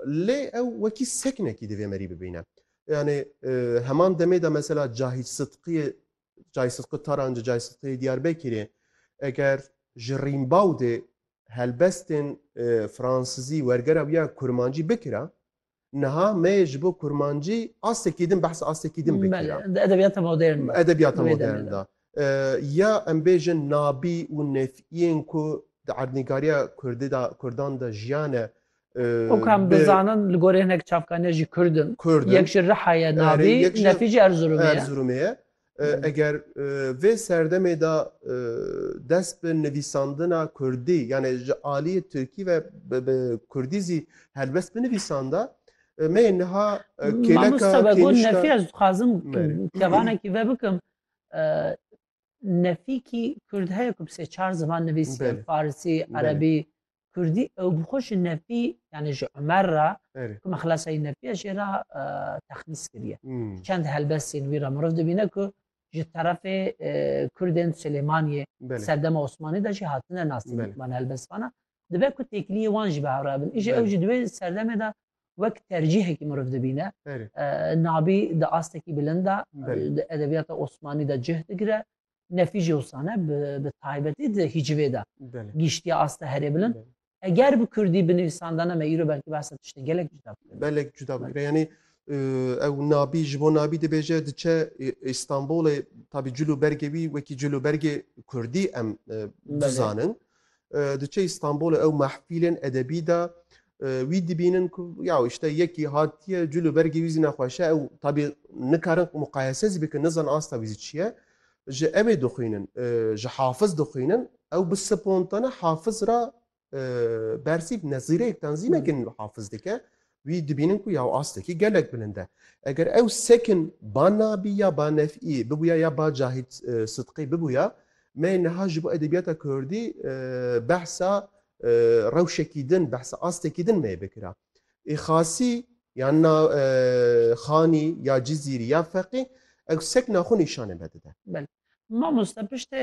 Lê ew wekî sekinekî divê merî bibîne. Yanî heman demê de mesela Cahît Sidqiyê Cahît Sidqi Tarancê, Cahît Sidqiyê Diyarbekirê eger ji Rîmbawdê helbestên fransizî wergera wî ya kurmancî bikira, niha me yê ji bo kurmancî astekî din behsa astekî din bikira. Belê, di edebiyata modern de. Edebiyata modern de. Ya em bêjin nabî û nêfîyên ku di erdnîgariya kurdî de kurdan de jiyane û ku em dizanin li gorî hinek çavkaniyan jî kurd in. Yek ji Riha ye nabî, nefî jî Erzurumê ye. Erzurumê ye. Eger vê serdemê de dest bi nivîsandina kurdî yanê ji aliyê tirkî ve bi kurdî zî helbest binivîsanda me yê niha kêleka kênişka. Mamosta Begûn nefî ez dixwazim kevanekî vebikim. Nefîkî Kurd heye ku bi sê çar ziman nivîsî Farsî, Erebî, Kurdî ew bi xwe ji nefî yani ji Umer re ku me xilasayî nefîya jê re texmîs kiriye. Çend helbestên wî re miriv dibîne ku ji terefê Kurdên Silêmaniyê serdema Osmanî de jî hatine nasîn man helbestvanan. Dibe ku têkiliyê wan jî bi hev re bin. Îjî ew ji di wê serdemê de wek tercîhekî miriv dibîne nabî di astekî bilind de di edebiyata Osmanî de cih digire nefî jî wusane bi taybetî di hîcivê de gîştiye aste herê bilind eger bi kurdî binivîsandane me îro belkî behsa tiştê gelek cuda belek cuda bigire yanî ew nabî ji bo nabî dibêje diçe Îstanbulê tabî cil û bergê wî wekî cil û bergê kurdî em bizanin Diçe Îstanbulê ew mehfîlên edebî de wî dibînin ku ya işte yekî hatiye cil û bergê wî zî nexweşe ew tabî nikarin muqayese zî bikin nizan asta wî zî çi ye ji ew ê dixwînin ji hafiz dixwînin ew bi spontane hafiz ra bersîv nezîreyektan zî nekin hafiz dike wî dibînin ku ya astekî gelek bilind e. Eger ew sekin ba Nabî ya ba Nef'î bibûya ya ba Cahît Sidqî bibûya, me niha ji bo edebiyata Kurdî behsa rewşekî din, behsa astekî din me yê bikira. Ê Xasî ya na Xanî ya Cizîrî ya Feqî ew sekna xwe nîşanê me dide. Belê. Mamosta piştê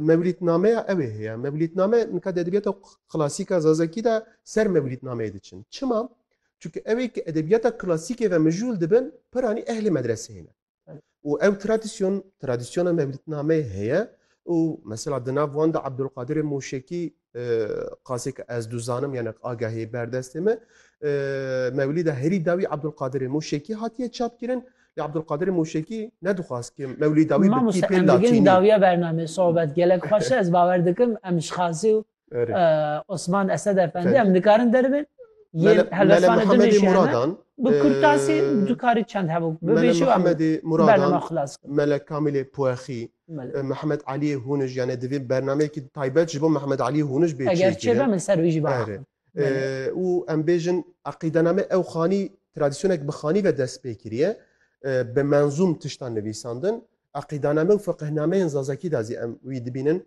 Mewlîtnameya ew ê heye. Mewlîtname nika di edebiyata klasîka zazakî de ser mewlîtnameyê diçin. Çima? Çunke ew ê ki edebiyata klasîkê ve mijûl dibin piranî ehlê medreseyê ne. Û ew tradisyon tradisyona mewlîtnameyê heye û mesela di nav wan de Ebdulqadirê Moşekî qasê ke ez duzanim yani agahê berdestê me mewlîda herî dawî Abdulkadirê Mûşekî hatiye çapkirin lê Abdulkadirê Mûşekî nedixwaz ke mewlî dawî bi pê latînî dawiya bername sohbet gelek xweş ez bawer dikim em ji xasî û Osman Esed Efendi em nikarin deribin Mehemedê Muradan bi kurtasî dukarî çend hebû bibêjî Mehemedê Muradan Mele Kamîlê Puexî Mehmet Aliyê Hûnij yanê divê bernameyekî taybet ji bo Mehmet Aliyê Hûnij bê çêkirin. Eger çêbe min ser wî jî ba axivin. Û em bêjin eqîdename ew xanî tradîsyonek bi xanî ve dest pê kiriye. Bi menzûm tiştan nivîsandin. Eqîdaname û fiqihnameyên zazakî de zî em wî dibînin.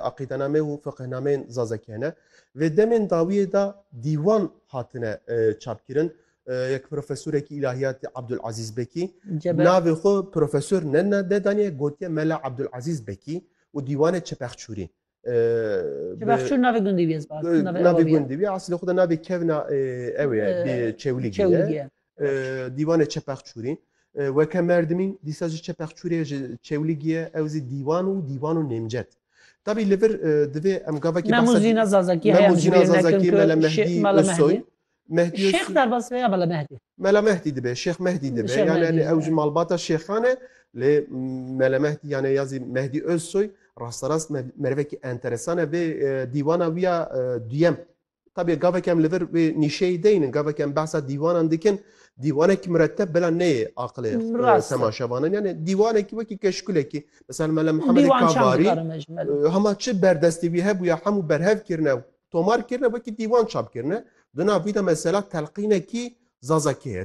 aqîdename û fiqhnameyên zazekî hene. Vê demên dawiyê de dîwan hatine çapkirin. Yek profesorekî îlahiyatî Abdul Azîz Bekî navê xwe profesor ne nedaniye gotiye Mela Abdul Azîz Bekî û dîwanê Çepexçûrî. Çepexçûr navê gundî bîye. Navê gundî bîye. Aslê xwe de navê kevna ew ye çewlî ye. Dîwanê Çepexçûrî weke merdimîn dîsa jî Çepexçûrê ji Çewlîgiyê ew zî dîwan û dîwan û nêmcet. Tabî li vir divê em gavekî Memo Zîna Zazakî Memo Zîna Zazakî Mele Mehdî Özsoy Mehdî Şêx derbas ve ya Mele Mehdî Mele Mehdî dibe Şêx Mehdî dibe yani ew ji malbata şêxan e lê Mele Mehdî yani ya zî Mehdî Özsoy rasterast mervekî enteresan e vê dîwana wî ya duyem Tabî gavek em li vir wê nîşeyê de yînin, gavek em behsa dîwanan dikin, dîwanek miretteb bila neyê aqilê temaşevanan. Yanê dîwanekî wekî keşkulekî, misal Mele Mihemedê Kavarî, hema çi berdestî wî hebûye hemû berhev kirine, tomar kirine wekî dîwan çap kirine. Di nav wî de mesela telqînekî Zazakî heye.